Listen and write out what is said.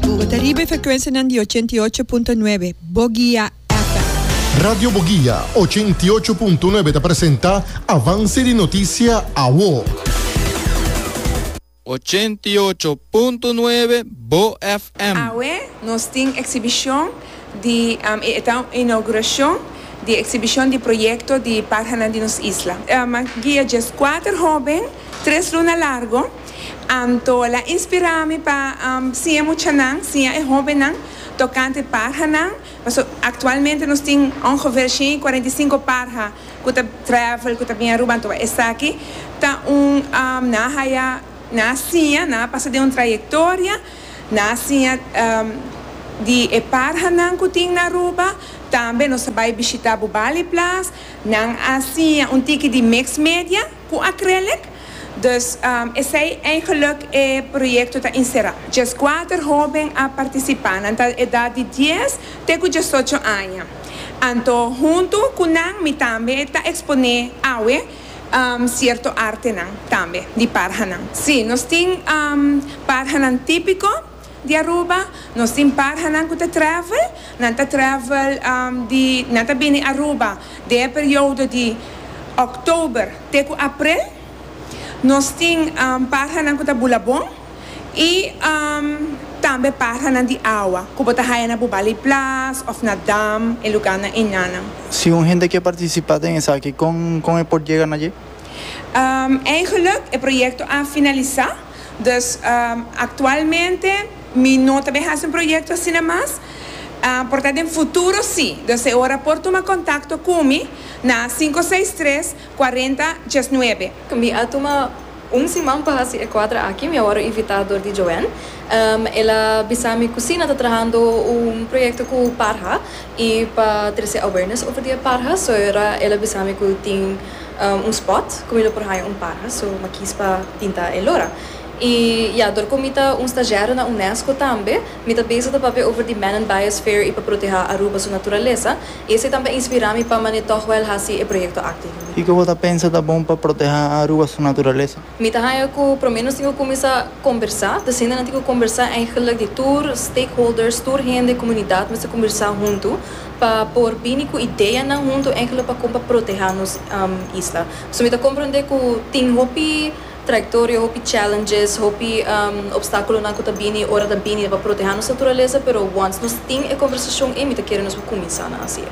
Bo ta riba e frekuensianan di ochenta i ocho punto nuebe Bogia FM. Radio Bogia ochenta i ocho punto nuebe ta presenta Avance di Noticia Awo. Ochenta i ocho punto nuebe Bo FM. Awe nos tin exhibicion di e ta un inauguracion di exhibicion di proyecto di Parhanan di nos isla. Guia dje scuater hoben tres luna largo. Anto la inspirá mi pa siña muchanan, siña e hóbennan tokante parhanan. Paso aktualmente nos tin ongefeer shen i kuarenta i sinku parha ku ta travel, ku ta bini Aruba. Anto esaki ta un, nan a haya, nan a siña, nan a pasa den un trayektoria, nan a siña di e parhanan ku tin na Aruba. Tambe nos a bai bishitá Bubali Plaas, nan a siña un tiki di Mixed Media. Cu acrylic, dus esey eigenlijk e proyecto ta encera. Djes cuater hoben a participa, nan ta edad di dies te cu diesocho aña. Anto hunto cu nan mi tambe ta expone awe cierto artenan tambe di parhanan. Si, nos tin parhanan tipico. Di Aruba, nos tin parhanan cu ta travel, nan ta travel di, nan ta bini Aruba den e periodo di Oktober te cu April, nos tin parhanan cu ta bula bon y tambe parhanan di awa cu bo ta haya na Bubali Plas of na Dam, e lugannan enanan. Si un hende kier participa den esaki, con con e por yega na dje? Eigenlijk, e proyecto a finalisa. Dus, aktualmente mi no ta bin hasi un proyekto asina mas, por ta den futuro si. Dus e ora por tuma kontakto ku mi na sinku seis tres kuarenta dies nuebe. Mi a tuma un siman pa hasi e kuadra aki, mi a wòrdu invitá dor di Joanne. El a bisa mi ku si nan ta trahando un proyekto ku parha i pa trese awareness over di e parha. So e ora el a bisa mi ku tin. un spot ku mi lo por haña un paha so m'a kies pa pinta e lora i ya dor ku mi ta un stagiario na unesco tambe mi ta bezig ta papia over di man and biosphere i pa protehá Aruba su naturalesa i esei tambe a inspirá mi pa manera tòg wèl hasi e proyekto akti. Kiko bo ta pensa ta bon pa protehá Aruba su naturalesa? Mi ta haña cu por lo menos tin cu cuminsa combersa, ta siña nan tin cu combersa eigenlijk di tur stakeholders, tur hende, comunidad mester cumbirsa huntu pa por bini cu ideanan huntu eigenlijk pa con pa proteha nos isla. So mi ta comprende cu tin hopi trayectoria, hopi challenges, hopi obstaculonan cu ta bini ora ta bini pa proteha nos naturaleza pero once nos tin e combersacion ey mi ta kere nos por cuminsa nan haci ey.